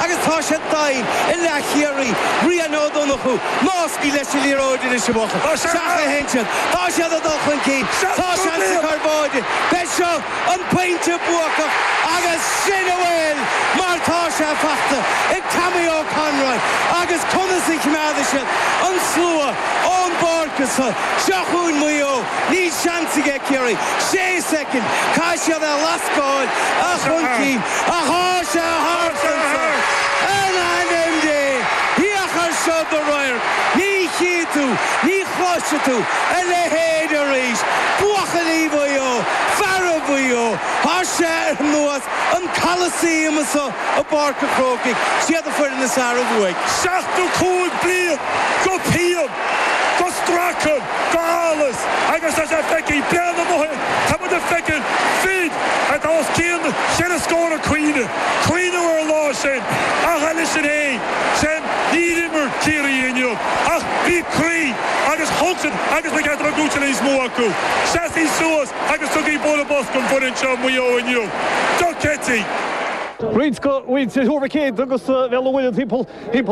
Agus tá siad doimhin i leath Chiarraí, Ryan Ó Donnchú, ná scaoil leis an liathróid anois a bhuachaill, seachain ansin. Tá siad ag dul chun cinn. Tá seans ag Cor Báine. Beidh seo an pointe buacach agus sin a bhfuil mar tá sé fachta ag Tommy Ó Conroy agus conas a chimeádfaidh siad an slua ón bpáirc as seo. Seo chugainn Maigh Eo. Níl seans aige Ciarraí. Sé soicind. Caithfidh siad é a lascáil chun cinn. Tá sé thart anois! In ainm Dé, féach ar seo do radharc! Ní chífidh tú, ní chloisfidh tú, a leithéid arís! Buachaillí Mhaigh Eo, feara Mhaigh Eo, tar éis an bhua sa Coliseum seo i bPáirc a' Chrócaigh, siad an foireann is fhearr a bhuaigh. Seachtó cúig bliain de phian, de stracadh, de allas, agus tá sé feicthe i mbliana againn. Tá muid ag feiceáil fir atá os cionn cheithre scór ag caoineadh, caoineadh ar an lá sin, ach eile sin é sin, níor imir Ciarraí inniu ach bhí croí agus thug siad agus ba cheart é a bheith buaite níos mó acu. Seasaigí suas agus tugaigí bualadh bos don bhfoireann seo Maigh Eo inniu. Dochreidte! Roinnt de mhuintir Thuar Mhic Éadaigh agus Bhaile an Róba timpeall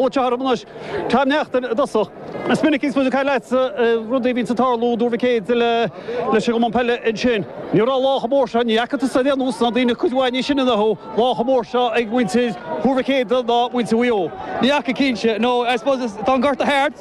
an tseomra anois. Tom Neachtain i dtosach. Is minic a phléigh mé leatsa rudaí a bhíonns ag tarlú, i dTuar Mhic Éadaigh leis an gCumann Peile ansin. Ní raibh lá chomh mór seo, ní fhaca tusa ar aon nós ná daoine cuid mhaith níos sine ná thú, lá chomh mór seo ag muintir Thuar Mhic Éadaigh ná muintir Mhaigh Eo. Ní fhaca cinnte. No, I suppose tá an gorta thart.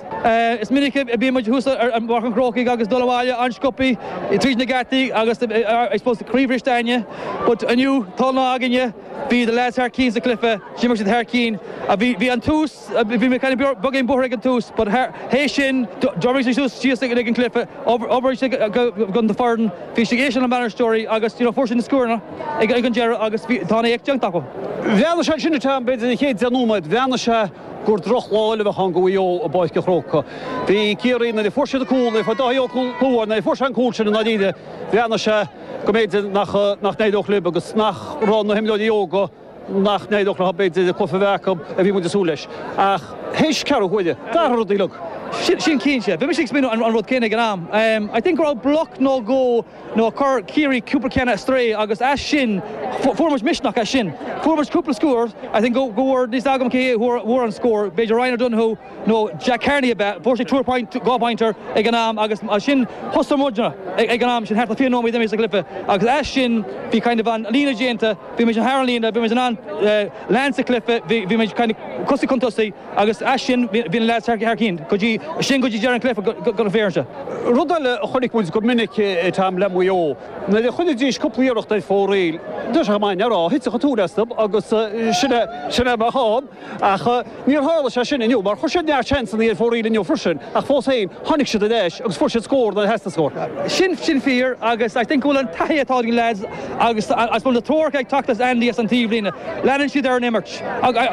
Is minic a bíonn muid thuas i bPáirc an Chrócaigh agus ag dul abhaile an-sciopthaí tríd na geataí agus I suppose croíbhriste againne but inniu tá an lá againne, bhí na lads thar cinn sa chluiche, d'imir siad thar cinn. Bhí an tús, Bhí mé ag caint beag ar an bhóthar ag an tús, but théis sin, d'oibrigh siad suas síos sa gcluiche, d'oibrigh siad don foireann, bhí siad ag éisteacht lena mbainisteoirí agus you know fuair siad na scóranna ag an deireadh agus bhí, tá an éacht déanta acu. Bhreathnaigh sé ansin, b'fhéidir b'fhéidir na chéad deich nóiméad, bhreathnaigh sé gur drochlá eile a bheadh ann do Mhaigh Eo i bPáirc an Chrócaigh. Bhí Ciarraí, nuair a fuair siad an cúl, nuair a fuair Dáithí Óg cúl, nuair a fuair sé an cúl sin i ndáiríre, bhreathnaigh sé go mb'fhéidir nach, nach n-éireodh lib agus nach raibh na himreoirí óga, nach n-éireodh leo b'fhéidir an cluiche a bheith acu a bhí muid ag súil leis. Ach théis ceathrú uaire d'athraigh an rud uilig. Sin cinnte. Bhí mise ag smaoineamh an rud céanna ag an am. I think go raibh bloc nó dhó nó a chuir Ciarraí cúpla ceann a strae agus as sin fuair muid misneach as sin. Fuair muid cúpla scór. I think go bhfuair, níl a fhios agam cé a fuair an scór, b'fhéidir Ryan O'Donoghue, nó Jack Carney ab ea, fuair sé two-pointer, dhá phointe ag an am agus mar sin thosaigh an run ag an am sin, thart ar 20 nóiméad imithe sa chluiche agus as sin bhí kind of an líne déanta, bhí muid thar an líne, bhí muid in ann lean sa chluiche, bhí muid kind of tosaigh chun tosaigh agus as sin bhí na leaids thar cinn go dtí sin, go dtí deireadh an chluiche go bhféair sé. Rud eile a chonaic muid go minic ag an am le Maigh Eo, nuair a chuiridís cúpla iarracht ar fóraoil, deis a chomáin ar ádh, thitfeadh an tóin astu agus sin é, sin é a bheadh ann. Ach níor tharla sé sin inniu, mar chuir siad neart seansanna ar fóraoil inniu freisin, ach fós féin, tháinig siad ar ais agus fuair siad scór nuair a theastaigh scór. Tá sin fíor agus I think go bhfuil an taithí atá ag na leaids agus I suppose na treoracha ag teacht as Andy as an taobhlíne, leanann siad ar an imirt.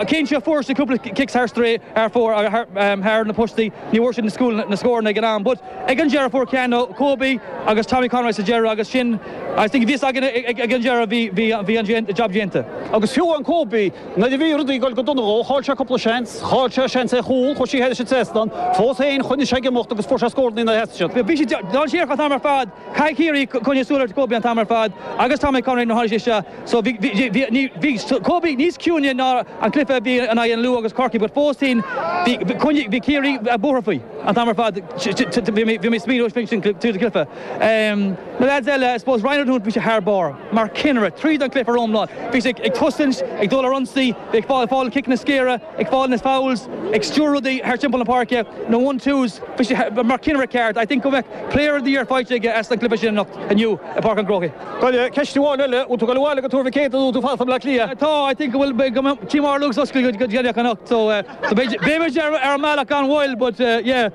Cinnte, fuair siad cúpla cic ar strae ar fóraoil agus thar na postaí, ní bhfuair siad na scóranna ag an am, but ag an deireadh fuair Keano, Kobe agus Tommy Conroy sa deireadh agus sin I think a bhí fhios againn ag an deireadh bhí an job déanta. Agus fiú amháin Kobe, Nuair a bhí rudaí ag dul go dona dhó, chaill sé cúpla seans. Chaill sé seans ar chúl, chuir sé thar an trasnán. Fós féin, choinnigh sé ag imeacht agus fuair sé scór nuair a theastaigh sé. Bhí siad dainséarach an t-am ar fad. Caithfidh Ciarraí coinneáil súil ar Kobe an t-am ar fad agus Tommy Conroy nuair a tháinig sé isteach so bhí Kobe níos ciúine ná an cluiche a bhí in aghaidh an Lú agus Corcaigh but fós féin bhí Ciarraí buartha faoi an t-am ar fad. Bhí mé ag smaoineamh ar sin tríd an gcluiche. Na lads eile, I suppose Ryan O'Donoghue bhí sé thar barr. Mar chinnire, tríd an gcluiche foriomlán, bhí sé ag cosaint, ag dul ar ionsaí, bhí ag fáil na ciceanna saora, ag fáil na fouls, ag stiúradh rudaí thar timpeall na páirce, na one-twos. Bhí sé mar chinnire ceart. I think go mbeadh Player of the Year faighte aige as an gcluiche sin anocht, inniu, i bPáirc an Chrócaigh. Cailleadh ceist amháin eile. Bhfuil tú ag dul abhaile go Tuar Mhic Éadaigh nó an bhfuil tú ag fanacht i mBleá Cliath? Tá, I think go bhfuil. Beidh Tí Mháire Luke's oscailte go déanach anocht so beimid ar an mbealach gan mhoill but yeah.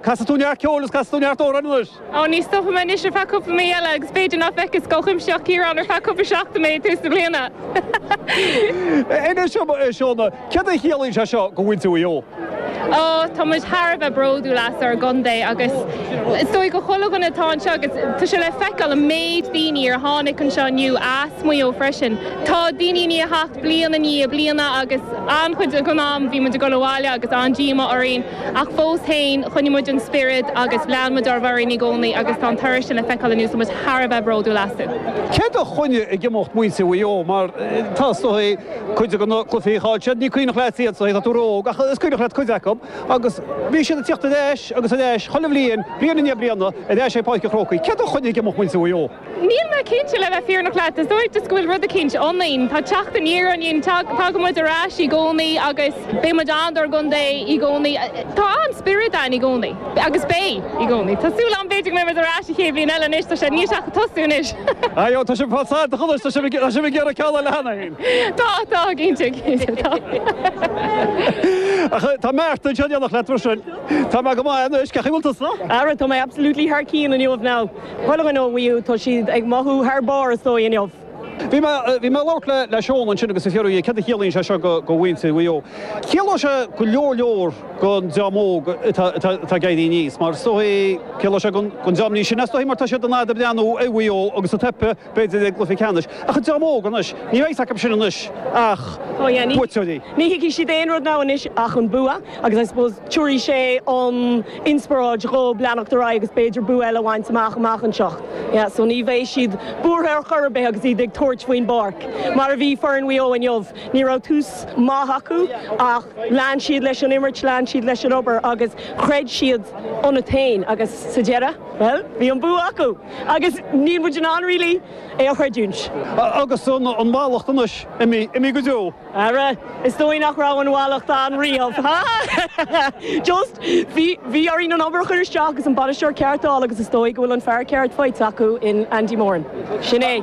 Casfaidh tú neart ceoil agus casfaidh tú neart amhráin anois. Ó, ní stopfaidh mé anois ar feadh cúpla mí eile agus b'fhéidir nach bhfeicfidh Scoil Chuimsitheach Chiaráin ar feadh cúpla seachtain mé ag tús na bliana! Anois, a Shona, céard a chiallaíonn sé seo do mhuintir Mhaigh Eo? Ó, tá muid thar a bheith bródúil as ár gcontae agus is dóigh do chuile dhuine atá anseo agus tá sé le feiceáil an méid daoine ar tháinig anseo inniu as Maigh Eo freisin. Tá daoine i ndiaidh theacht bliain i ndiaidh bliana agus an-chuid den am bhí muid ag dul abhaile agus an-díomá orainn. Ach fós féin, choinnigh muid an spiorad agus lean muid ár bhfoireann i gcónaí agus tá an toradh sin le feiceáil inniu, tá muid thar a bheith bródúil astu. Céard a choinnigh ag imeacht muintir Mhaigh Eo? Mar tá is dóigh, cuid de na cluichí a chaill siad, ní cuimhneach leat iad, is dóigh, tá tú ró-óg, ach is cuimhneach leat cuid acu agus bhí siad ag teacht ar ais agus ar ais, chuile bhliain, bliain i ndiaidh bliana, ar ais ag Páirc an Chrócaigh. Céard a choinnigh ag imeacht muintir Mhaigh Eo? Níl mé cinnte, le bheith fírinneach leat. Is dóigh go bhfuil rud eicínt ionainn. Tá teacht aniar ionainn. Tagann muid ar ais i gcónaí agus beidh muid ann dár gcontae i gcónaí. Tá an-spiorad ann i gcónaí agus beidh i gcónaí. Tá súil agam, b'fhéidir, go mbeidh muid ar ais an chéad bhliain eile anois. Tá sé níl sé ach ag tosú anois. Ayo, tá sibh fad said, chonair, tá sibh ag iarraidh ceol a lean é fhéin. Tá, tá, cinnte, cinnte, tá. Tá Martin anseo in éineacht leat mar sin. Tá mé go maith anois, cén chaoi a bhfuil tusa? Ara, tá mé absolutely thar cionn inniu, now. Chuile dhuine ó Mhaigh Eo, tá siad ag mothú thar barr is dóigh inniu. Bhí mé ag labhairt le le Seán ansin agus ag fiafraí céard a chiallaíonn sé seo do mhuintir Mhaigh Eo. Ciallóidh sé go leor leor don dream óg atá ag éirí aníos mar is dóigh, ciallóidh sé don dream níos sine is dóigh mar tá siad an fhad ag breathnú ar Mhaigh Eo agus ag teipeadh b'fhéidir i gcluiche ceannais, ach an dream óg anois, níl a fhios acu sin anois ach buaiteoirí. Ní thuigfidh siad aon rud now anois ach an bua agus I suppose tiúrfaidh sé an inspioráid dhóibh leanacht ar aghaidh agus b'fhéidir bua eile a bhaint amach amach anseo. Yeah, so ní bheidh siad buartha ar chor ar bith agus iad ag tabhairt faoin bpáirc, mar a bhí foireann Mhaigh Eo inniu. Ní raibh tús maith acu ach lean siad leis an imirt, lean siad leis an obair agus chreid siad iontu féin agus sa deireadh, bhuel, bhí an bua acu! Agus níl muid in ann, really, é a chreidiúint. Agus an mhallacht anois, imithe go deo. Ara, is dóigh nach raibh an mhallacht ann riamh, ha ha! Just, bhí orainn an obair a chur isteach agus an bainisteoir ceart a fháil agus is dóigh go bhfuil an fear ceart faighte acu in Andy Moran. Sin é.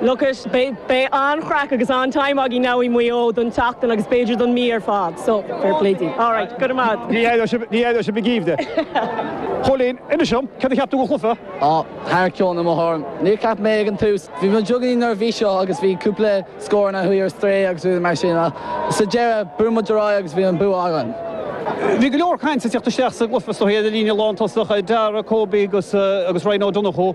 Look it, beidh an-chraic agus an-time againn now i Maigh Eo don tseachtain agus b'fhéidir don mí ar fad, so fair play daoibh. Alright, go raibh maith. Ní éireoidh sibh, ní éireoidh sibh ag aoibh de. Chóilín, inis dom, céard a cheap tú den chluiche? Á, thar cionn, i mo thuairim. Níor cheap mé ag an tús, bhí mé beagáinín neirbhíseach agus bhí cúpla scóranna a chuaigh ar strae agus rudaí mar sin ach sa deireadh, bhrúigh muid ar aghaidh agus bhí an bua againn. Bhí go leor cainte ag teacht isteach sa gcluiche is dóigh ar an líne lántosach, Darragh, Kobe agus Ryan Ó Donnchú.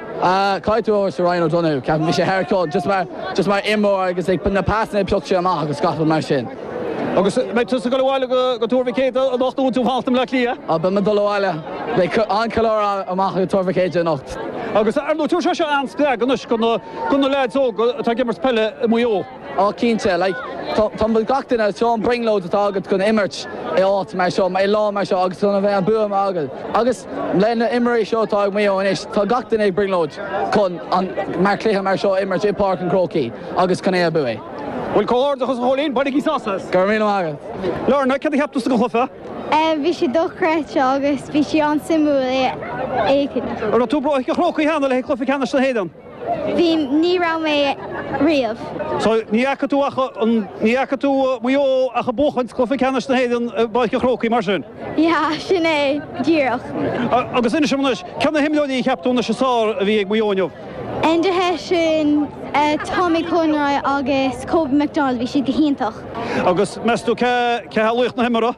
Caithfidh tú é a thabhairt do Ryan O'Donoghue, ceapaim. Bhí sé thar cionn, just mar, just mar imreoir agus ag, na pasanna a phioc sé amach agus gach rud mar sin. Agus beidh tusa ag dul abhaile go, go Tuar Mhic Éadaigh anocht nó an tú ag fanacht i mBleá Cliath? Á, beidh mé ag dul abhaile. Beidh an-cheiliúradh ann amach i Tuar Mhic Éadaigh anocht. Agus ar ndóigh, tá sé seo an-spreagadh anois do na, do na leaids óga atá ag imirt peile i Maigh Eo. Oh cinnte, like, tá, tá, bhfuil gach duine, seo an brionglóid atá agat chun imirt i áit mar seo, i lá mar seo agus chun a bheith an bua againn. Agus le na imreoirí seo atá ag Maigh Eo anois, tá gach duine ag brionglóid chun an, mar cluiche mar seo a imirt i bPáirc an Chrócaigh agus chun é a bhuaigh. Bhuel comhghairdeachas a Chóilín, bainigí sásamh as! Go raibh míle maith agat. Lorna, cad a cheap tusa den chluiche? Eh, bhí sé dochreidte agus bhí sé an-suimiúil é fhéachaint. An raibh tú i bPáirc an Chrócaigh cheana le haghaidh cluiche ceannais na hÉireann? Bhí, ní raibh mé riamh. So, ní fhaca tú ach, ní fhaca tú Maigh Eo ach ag buachan Cluiche Ceannais na hÉireann i bPáirc an Chrócaigh, mar sin? Yeah, sin é, díreach. Agus inis dom anois, cé na himreoirí a cheap tú anois is fearr a bhí ag Maigh Eo inniu? Enda Hession, Tommy Conroy agus Kobe McDonald, bhí siad go hiontach. Agus meas tú cé, cé hé laoch na himeartha?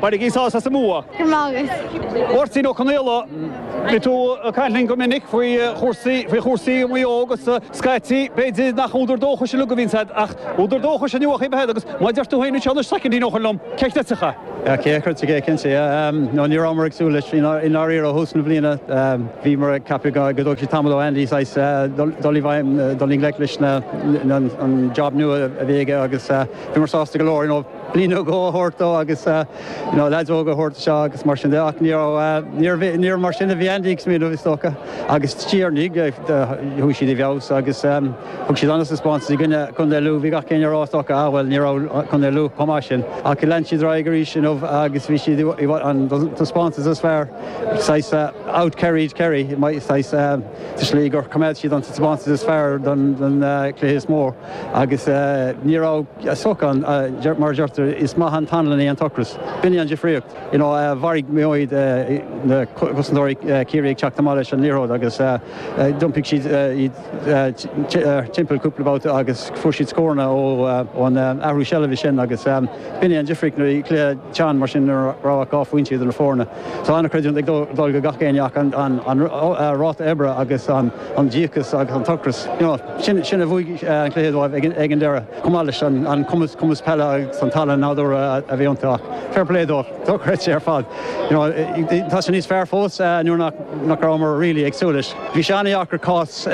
Bainigí sás as an mbua. Grma agus. Máirtín Ó Conaola, bhí tú ag caint linn go minic faoi chúrsaí, faoi chúrsaí Mhaigh Eo agus scaití b'fhéidir nach údar dóchais uilig a bhíonn a'd ach údar dóchais i ndiaidh a bheith a'd agus mar a deir tú féin anseo anois soicind nó dhó ó shin liom, cé chreidfeadh. Yeah, cé a chreidfeadh é, cinnte, yeah. No, ní rabhamar ag súil leis i ndáiríre ó thús na bliana. Bhíomar ag ceapadh go dtógfadh sé tamall ar Andy saghas dul i bhfeidhm, dul i ngleic leis na, an job nua a bhí aige agus bhíomar sásta go leor, you know. bliain nó dhó a thabhairt dó agus you know leaids óga a thabhairt ar aghaidh agus mar sin de ach ní raibh, ní raibh, níor mar sin a bhí Andy ag smaoineamh is dócha agus sure ní, chuaigh siad i bhfeabhas agus thug siad an-taispeántas i gcoinne Contae Lú, bhí gach éinne a rá is dócha ah bhuel ní raibh Contae Lú chomh maith sin ach lean siad ar aghaidh arís you know agus bhí siad i bhfad, an taispeántas is fearr, saghas out Kerryed Kerry, saghas sa slí gur choimeád siad an taispeántas is fearr don, don chluiche is mó. Agus ní raibh, sea, ocras ann. Mar a deirtear, is maith an t-anlann é an t-ocras. B'in é an difríocht. Mharcáil Maigh Eo na cosantóirí Ciarraí ag teacht amach leis an liathróid agus d'iompaigh siad iad timpeall cúpla babhta agus fuair siad scóranna ón athrú seilbhe sin agus b'in é an difríocht. Nuair a bhí cluiche teann mar sin, nuair nach raibh ach dhá phointe idir na foirne, tá an-chreidiúint ag dul go gach éinne ach an ráta oibre agus an. an díocas agus an t-ocras, you know, sin, sin a bhuaigh an cluiche dóibh ag, ag an deireadh, chomh maith leis an, an cumas, cumas peile agus an tallann nádúrtha a, a bhí iontu. Ach fair play dóibh. Dochreidte ar fad. You know, tá sé níos fearr fós nuair nach, nach rabhamar really ag súil leis. Bhí sé an-deacair cás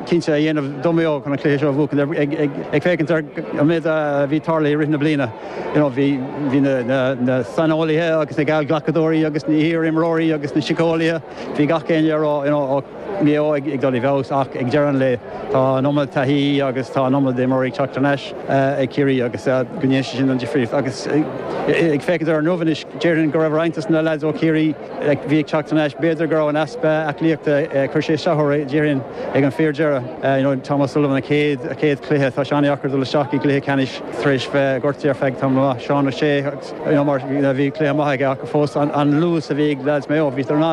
cinnte a dhéanamh do Mhaigh Eo chun an cluiche seo a bhuachan, ag, ag, ag, ag féachaint ar an méid a bhí ag tarlú i rith na bliana. You know, bhí, bhí na, na, na saineolaithe agus na geallghlacadóirí agus na hiar-imreoirí agus na síceolaithe, bhí gach éinne ag rá, you know, Maigh Eo ag dul i bhfeabhas ach ag deireadh an lae tá an iomad taithí agus tá an iomad imreoirí ag teacht thar n-ais ag Ciarraí agus go ndéanann sé sin an difríocht agus ag féachaint ar inniu anois déarfainn go raibh roinnt dos na leaids ó Chiarraí a bhí ag teacht thar n-ais b'fhéidir go raibh an easpa aclaíochta gur chuir sé isteach orthu déarfainn ag an fíor deireadh you know Tom O'Sullivan a chéad a chéad chluiche tá sé an-deacair dul isteach i gcluiche ceannais tar éis bheith gortaithe ar feadh tamall maith Seán O'Shea nó mar a bhí cluiche maith aige ach fós, an luas a bhí ag leaids Mhaigh Eo. Bhíodar in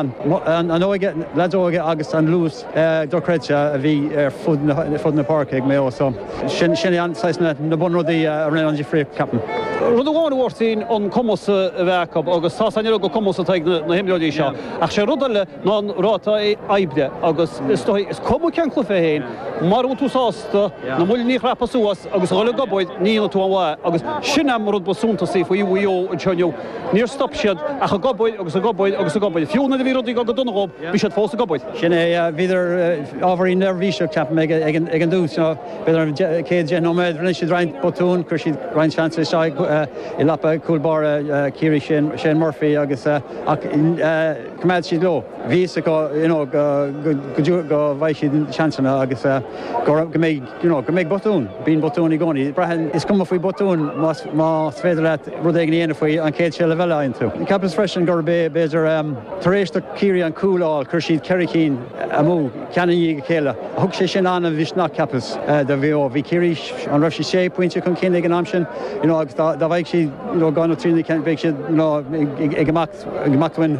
ann an óige, leaids óga agus an luas dochreidte a bhí ar fud na páirce ag Maigh Eo. So sin é an saghas, na bunrudaí a rinne an difríocht, ceapaim. Rud amháin ab ea an cumas a bheith acu, agus tá's a'inn ar fad go bhfuil cumas atá ag na himreoirí seo, ach sé rud eile, ná an ráta oibre agus is dóigh, is cuma cén cluiche é féin, mura bhfuil tú sásta na muinchillí a chrapadh suas agus a dhul ag obair, ní dhéanfaidh tú aon mhaith agus sin an rud ba suntasaí faoi Mhaigh Eo anseo inniu, níor stop siad ach ag obair agus ag obair agus ag obair. Fiú nuair a bhí rudaí ag dul go dona dhóibh, bhí siad fós ag obair. Sin é, bhíodar ábhairín neirbhíseach, ceapaim, ag an dtús, bhíodar an chéad, deich nóiméad, rinne siad roinnt botún, chuir siad roinnt seans isteach i lapaí cúl báire Chiarraí, Shane Murphy, agus, ach, Choimeád siad leo. Bhí fhios acu you know go dtiocfadh, go bhfaigheadh siad seansanna agus go raibh, go mbeidh you know, go mbeidh botúin. Bíonn botúin i gcónaí. Braitheann, is cuma faoi bhotúin más, más féidir leat rud éigin a dhéanamh faoi an chéad seilbh eile a fhaigheann tú. Cheapas freisin gurb é, b'fhéidir, tar éis do Chiarraí an cúl a fháil, chuir siad ceithre chinn amú, ceann i ndiaidh a chéile. Thug sé sin an-mhisneach, cheapas, do Mhaigh Eo. Bhí Ciarraí, an raibh siad sé phointe chun cinn ag an am sin? You know agus dá, dá bhfaigheadh siad you know dhá nó trí cinn, bheadh siad you know ag, ag, ag imeacht. amach ansin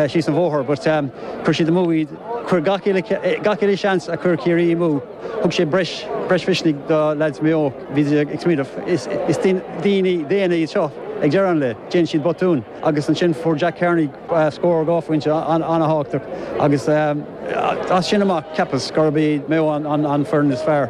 síos an bhóthar but chuir siad amú iad. Chuir gach uile sheans a chuir Ciarraí amú. Thug sé breis misnigh do leaids Mhaigh Eo. Bhí siad ag smaoineamh, is daoine daonna iad seo ag deireadh an lae, déanann siad botúin agus ansin fuair Jack Carney scór dhá phointe an-thábhachtach agus as sin amach cheapas gurb iad Maigh Eo an foireann is fearr.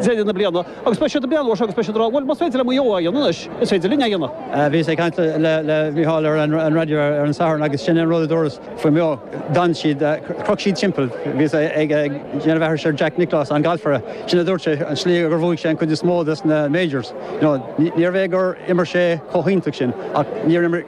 deireadh na bliana agus beidh siad ag breathnú air seo agus beidh siad ag rá, 'Bhuel, más féidir le Maigh Eo é a dhéanamh anois, is féidir linne é a dhéanamh'. Bhíos ag caint le Mícheál ar an raidió ar an Satharn agus sin é an rud a dúras faoi Mhaigh Eo, d'fhan siad, chroch siad timpeall. Bhíos ag déanamh aithris ar Jack Nicklaus, an galfaire, sin a dúirt sé, an tslí gur bhuaigh sé an chuid is mó des na majors, níorbh é gur imir sé chomh hiontach sin ach níor imir,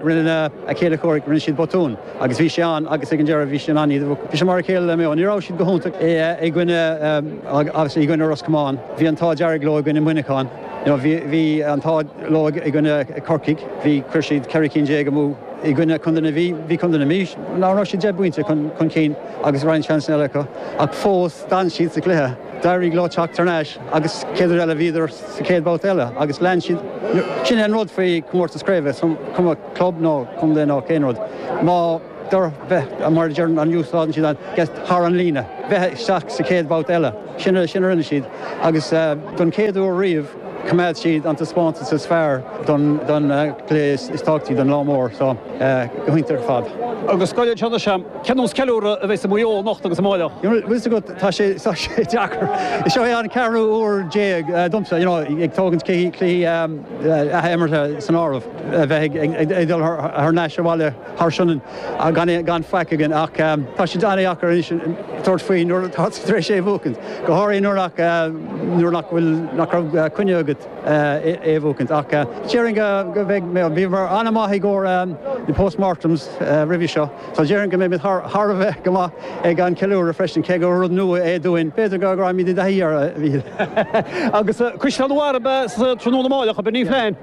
rinne a chéile comhraic, rinne siad botún. Agus bhí sé ann, agus ag an deireadh bhí sé in ann iad, bhí sé mar a chéile le Maigh Eo. Ní raibh siad go hiontach i gcoinne, obviously, i gcoinne Ros Comáin. Bhí an t-ádh dearg leo i gcoinne Mhuineacháin. You know, bhí, bhí an t-ádh leo i gcoinne Corcaigh. Bhí, chuir siad ceithre cinn déag amú. I gcoinne Chontae na Mí. Bhí Contae na Mí, an raibh siad deich bpointe chun, chun cinn agus roinnt seansanna eile acu. Ach fós, d'fhan siad sa chluiche. D'éirigh leo teacht thar n-ais agus chéad rud eile bhíodar sa chéad babhta eile agus lean siad. Sin é an rud faoi chomórtas craoibhe, is cuma. club ná contae ná aon rud. Má d'oir, bheith, mar a deireann, you know, faigheann siad an, get, thar an líne. Bheith isteach sa chéad bhabhta eile. Sin a, sin a rinne siad. Agus don chéad uair riamh choimeád siad an taispeántas is fearr don, don chluiche is tábhachtaí don lá mór so, go hiontach ar fad. Agus scaoil anseo anois. Cén nós ceiliúradh a bheidh i Maigh Eo anocht agus amárach? Bhfuil 'fhios agat, tá sé, tá sé deacair. Seo é an ceathrú uair déag domsa, you know, ag tógaint cluichí, cluichí athimeartha san áireamh. a bheith ag dul thar n-ais abhaile thar Sionainn gan faic againn ach tá sé an-deacair anois tabhairt faoi nuair atá tú tar éis é a bhuacaint, go háirithe nuair nach bhfuil, nach raibh coinne agat é a bhuacaint. Ach déarfainn go mbeidh, bhíomar an-mhaith i gcomhair na postmortems roimhe seo so déarfainn go mbeimid thar a bheith go maith ag an ceiliúradh freisin cé gur rud nua é dúinn, b'fhéidir go raghaimid i dtaithí air a Mhíchíl. Agus Caisleán an Bharraigh ab ea sa tráthnóna amáireach, ab ea Ní Flainn?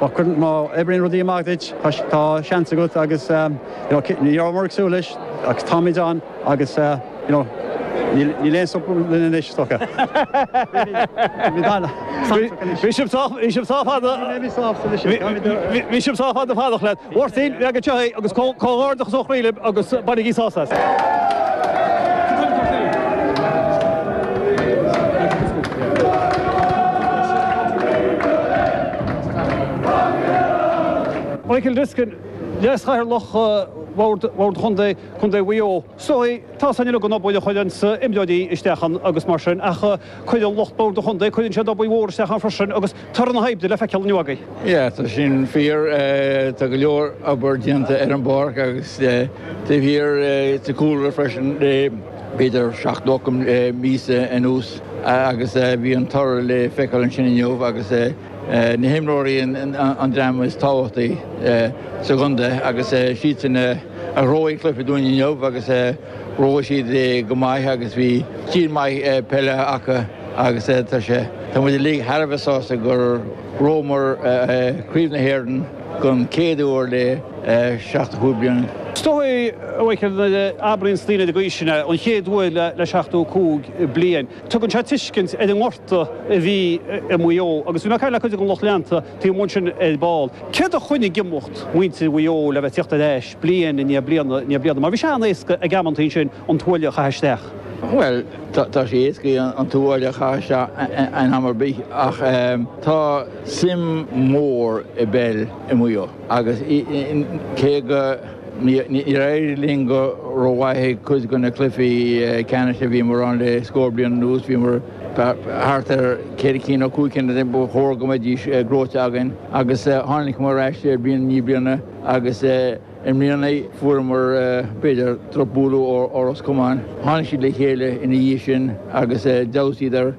má cuireann, má oibríonn rudaí amach duit, tá seans agat agus you know ní rabhamar ag súil leis ach táimid ann agus you know níl, níl aon stop linn anois, is dócha. Táimid ann, táimid ann anois. Bhí sibh sách, bhí sibh sách fada, bhí sibh sách fada ag fanacht leis. Mháirtín, leag anseo é agus comhghairdeachas ó chroí libh agus bainigí sásamh as. Michael Diskin, Leas-Chathaoirleach Bhord Chontae Mhaigh Eo, Sorry, tá a fhios againn uilig an obair a chuireanns imreoirí isteach ann agus mar sin ach. Cuireann lucht Bord an Chontae, cuireann siad obair mhór isteach ann freisin agus toradh na hoibre le feiceáil inniu againn. Yeah, tá sin fíor. Tá go leor obair déanta ar an bpáirc agus taobh thiar sa chúlra freisin, b'fhéidir seacht nó ocht míosa anuas agus bhí an toradh le feiceáil ansin inniu agus na himreoirí an dream is tábhachtaí sa gcontae agus siadsan a ghnóthaigh an cluiche dúinn inniu agus, Ghnóthaigh siad é go maith agus bhí stíl maith peile acu agus tá sé, tá muid uilig thar a bheith sásta gur ghnóthaíomar Craobh na hÉireann don chéad uair le seachtó cúig bliana. Is dóigh a Mhaidhcil nuair a abraíonns daoine go aoiseanna, an chéad uair le seachtó cúig bliain, tugann sé tuiscint ar an ngort. a bhí i Maigh Eo agus bhí mé ag caint le cuid den lucht leanta taobh amuigh ansin ar ball. Céard a choinnigh ag imeacht muintir Mhaigh Eo le bheith ag teacht ar ais bliain i ndiaidh bliana i ndiaidh bliana? Mar bhí sé an-éasca ag amanntaí ansin an tuaille a chaitheamh isteach. Bhuel, tá sé éasca an tuaille a chaitheamh isteach in am ar bith ach tá suim mhór i bpeil i Maigh Eo agus cé go. Níor éirigh linn go rómhaith ag cuid de na cluichí ceannais a bhíomar ann le scór bliain anuas. Bhíomar thart ar cheithre cinn nó cúig cinn ba chóir go mbeidís gnóite againn agus tháinigeamar ar ais bliain i ndiaidh bliana agus i mbliana fuaireamar, b'fhéidir, drochbhualadh ó Ros Comáin. Tháinig siad le chéile ina dhiaidh sin agus d'fheabhsaíodar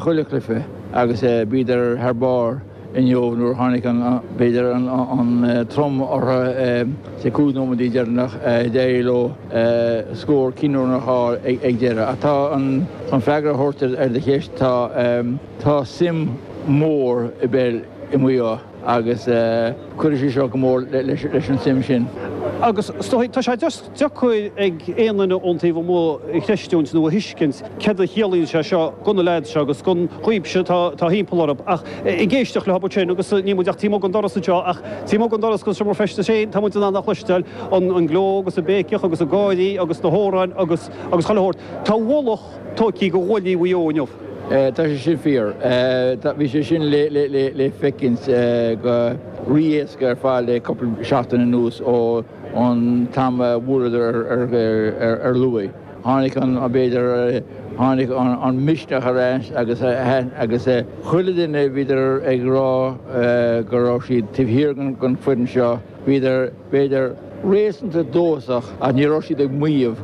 chuile chluiche agus bhíodar thar barr. inniu nuair a tháinig an, b'fhéidir, an trom orthu sa 5 nóiméad deireanach d'éirigh leo scór cinniúnach a fháil ag deireadh ach tá an chun freagra a thabhairt ar do cheist tá tá suim mhór i bpeil i Maigh Eo agus cuirfidh sé seo go mór leis an suim sin. Agus is dóigh, tá sé just. deacair ag aon duine ón taobh amuigh a chreistiúint nó a thuiscint céard a chiallaíonn sé seo gona leaids seo agus gon ghrúpa seo atá thimpeall orthu ach ag éisteacht leothub ansin agus níl muid ach taobh amuigh den doras anseo ach taobh amuigh den doras go seomra feistis féin tá muid in ann a chloisteáil an an gleo agus an béiceach agus an gáirí agus na hamhráin agus agus chuile shórt tá ualach tóigthí go ghuaillí Mhaigh Eo inniu. Tá sé sin fíor. Bhí sé sin le le le le feicint go rí-éasca ar fad le cúpla seachtain anuas ó Ón t-am a bhuadar ar Lú, tháinig an, b'fhéidir, tháinig an misneach ar ais agus agus chuile duine, bhíodar ag rá go raibh siad taobh thiar den foireann seo, bhíodar, b'fhéidir, réasúnta dóchasach ach ní raibh siad ag maíomh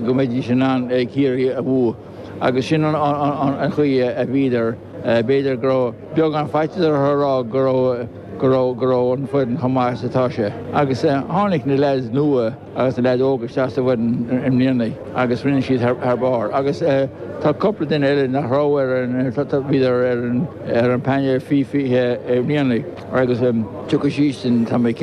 go mbeidís in ann Ciarraí a bhualadh agus sin an chaoi a bhíodar. B'fhéidir go raibh beagán faitíos orthu a rá go raibh, go raibh, go raibh an foireann chomh maith is atá sé. Agus tháinig na leaids nua agus na leaids óga isteach sa bhfoireann i mbliana agus rinne siad thar, thar barr. Agus tá cúpla duine eile nach raibh ar an, bhíodar ar an, ar an bpainéal faoi 20 i mbliana agus tiocfaidh siadsan, tá mé cinnte.